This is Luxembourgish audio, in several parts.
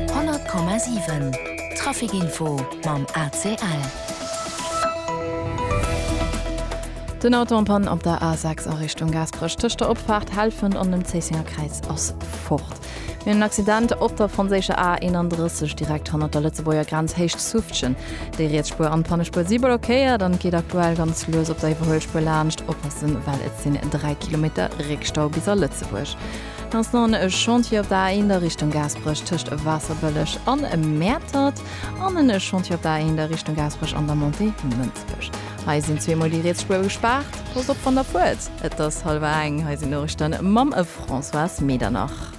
100,7 Trafic Info mam ACL. Den Auto am Pann op der A6 a Richtung Gaasperech. Tëscht der Opfaart Helfent an dem Zéissenger Kräiz ass fort. Mir hunn en Accident op der franséischer A 31 direkt hannert der Lëtzebuerger Grenz Héicht Suftgen. Déi riets Spuer an d'Pannespuer si blockéiert an et geet aktuell ganz lues op der Iwwerhuelspuer laanscht. Oppassen, well et sinn 3 Kilometer Réckstau bis a Lëtzebuerg. Ganz no en e Chantier op der A1 der Richtung Gaasperech tëscht Waasserbëlleg an Mäertert an en e Chantier op der A1 der Richtung Gaasperech an der Montée Mënsbech. Hei sinn zweemol déi Rietsspuer gespaart. Passt op wann der fuert. Et ass hallwer eng. Hei sinn d'Noriichte mam Françoise Medernach.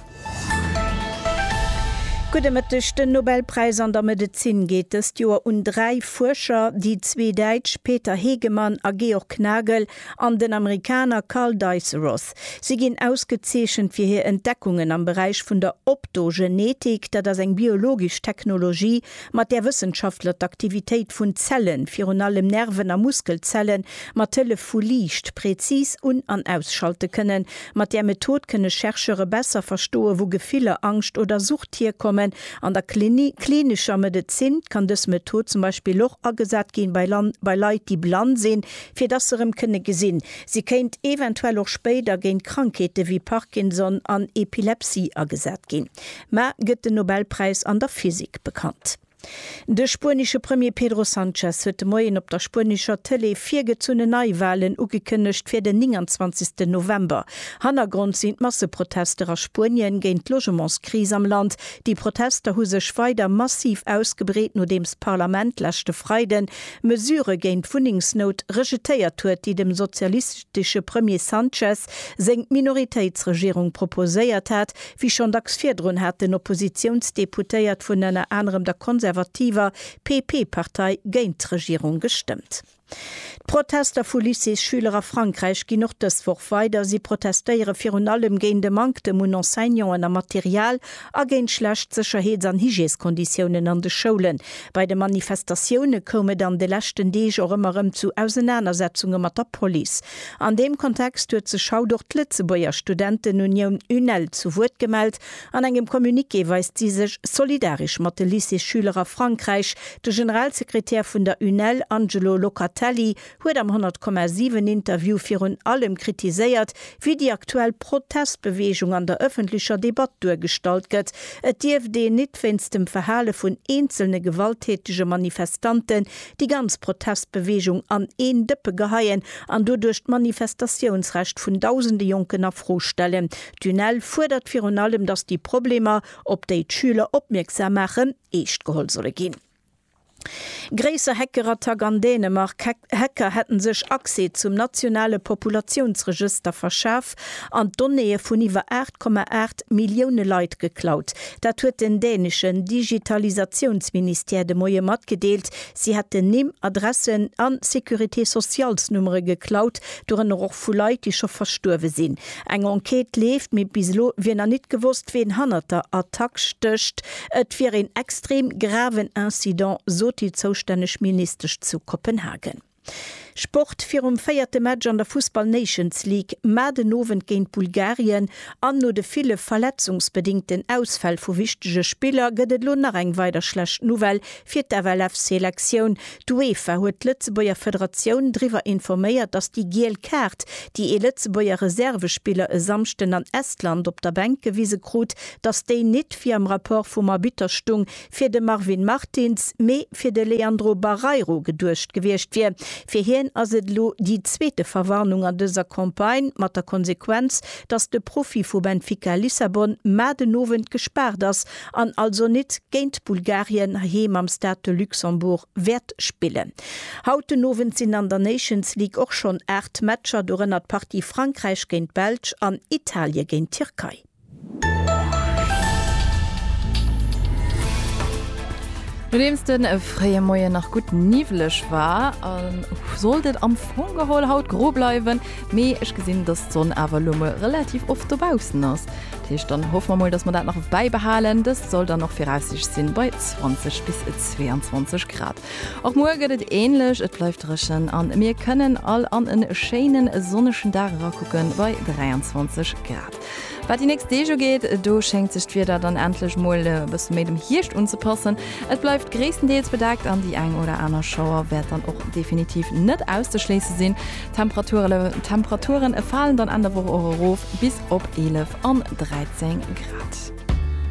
Gudde Mëtteg. Den Nobelpräis an der Medezin geet dëst Joer un dräi Fuerscher, déi zwee Däitsch Peter Hegemann a Georg Nagel, an den Amerikaner Carl Dyce Roth. Si ginn ausgezeechent fir hir Entdeckungen am Beräich vun der Optogenetik, dat ass eng biologesch Technologie, mat där Wëssenschaftler d'Aktivitéit vun Zellen, virun allem Nerven a Muskelzelle mat Hëllef vu Liicht präzis un an ausschalte kënnen. Mat där Method kënne Chercheure besser verstoen, wou Gefiller, Angscht oder Sucht hierkommen. An der klinescher Medezin kann dës Method zum Beispill och agesat ginn bei Leit, déi blann sinn, fir dass se erëm kënne gesinn. Si kéint eventuell och spéider géint Krankheete wéi Parkinson an Epilepsie agesat ginn. Mar gëtt den Nobelpräis an der Physik bekannt? De spuenesche Premier Pedro Sanchez huet de Moien op der spuenescher Tëlee virgezunne Neiwalen ugekënnegt fir den 29 November. Hannergrond sinn d'Masseprotester a Spuenien géint d'Logementskris am Land. Déi Protester hu sech weider massiv ausgebreet, nodeems d'Parlament leschte Freiden Mesure géint d'Wunnengsnout rejetéiert huet, déi dem sozialistesche Premier Sanchez seng Minoritéitsregierung proposéiert hat, wéi schonn dacks virdrun haten Oppositiounsdeputéiert vun ënner anerem der konservativer PP-Partei géint d'Regierung gestëmmt. D'Protester vu Lycéesschüler a Frankräich ginn och dës Woch weider. Si protestéiere virun allem géint e Manktem un Enseignanten a Material a géint schlecht Sécherheets an Hygièskonditiounen an de Schoulen. Bei de Manifestatioune koum et an de leschten Deeg och ëmmer erëm zu Ausenanersetzunge mat der Police. An deem Kontext huet sech haut och d'Lëtzebuerger Studentenunioun UNEL zu Wuert gemellt. An engem Communiqué weist si sech solidaresch mat de Lycéesschüler a Frankräich. De Generalsekretär vun der UNEL, Angelo Locatelli, huet am 100 Komma 7 Interview virun allem kritiséiert, wéi déi aktuell Protestbeweegung an der ëffentlecher Debatt duergestallt gëtt. Et dierft een nit wéinst dem Verhale vun eenzelne gewalttätege Manifestanten déi ganz Protestbeweegung an een Dëppe geheien an doduerch d'Manifestatiounsrecht vun dausende Jonken a Fro stellen. D'UNEL fuerdert virun allem, datt déi Problemer, op déi d'Schüler opmierksam maachen, eescht geholl solle ginn. Gréisser Hackerattack an Dänemark, Hacker hätte sech Accès zum nationale Populatiounsregëster verschaf an d'Donnéeë vun iwwer 8,8 Millioune Leit geklaut. Dat huet den däneschen Digitalisatiounsministère de Moie matgedeelt. Si hätten Nimm, Adressen a Sécurité-sociales-Nummere geklaut, dorënner och vu Leit, déi scho verstuerwe sinn. Eng Enquête leeft, mee bis elo wier nach nit gewosst, ween hannert der Attack stécht. Et wier een extrem graven Incident, sot déi zoustänneg Ministesch zu Kopenhagen. Sport, Virum véierte Match an der Fussball Nations League, Maart en Owend géint Bulgarien, an no de ville verletzungsbedingten Ausfäll vu wichtege Spiller gëtt et elo nach eng weider schlecht Nouvelle Fir d'FLF-Selektioun, d'UEFA huet d'Lëtzebuerger Federatioun driwwer informéiert, datt déi giel Kaart, déi ee Lëtzebuerger Reservespiller e Samschden an Estland op der Bänk gewise krut, datt déi nit, wéi am Rapport vum Arbitter stung, fir de Marvin Martins, mee fir de Leandro Barreiro geduecht gewiescht wier. Fir hien ass et elo déi zweete Verwarnung an dëser Campagne, mat der Konsequenz, datt de Profi vu Benfica Lissabon mar den Owend gespaart ass an also nit géint Bulgarien heiheem am Stade de Luxembourg wäert spillen. Haut den Owend sinn an der Nations League och schonn 8 Matcher, dorënner d'Partie Frankräich géint d'Belsch an Italie géint d'Tierkei. Nodeems de fréie Moien nach gutt niwweleg war, sollt et am Fong geholl haut gro bleiwen. Mee ech gesinn, dass d'Sonn awer elo mol relativ oft dobaussen ass. Dat heescht, dann hoffe mer mol, dass mer dat nach bäibehalen. Dëst soll dann och viraussiichts sinn bei 20 bis 22 Grad. Och muer gëtt et änlech, et bleift dréchen an mir kënnen all an e schéinen sonnegen Dag erakucken bei 23 Grad. Wat déi nächst Deeg ugeet, do schéngt sech d'Wieder dann endlech mol e bësse méi dem Hierscht unzepassen. Et bleift gréisstendeels bedeckt an déi eng oder aner Schauer wäert dann och definitiv net auszeschléisse sinn. D'Temperature falen dann Enn der Woch och erof bis op 11 an 13 Grad.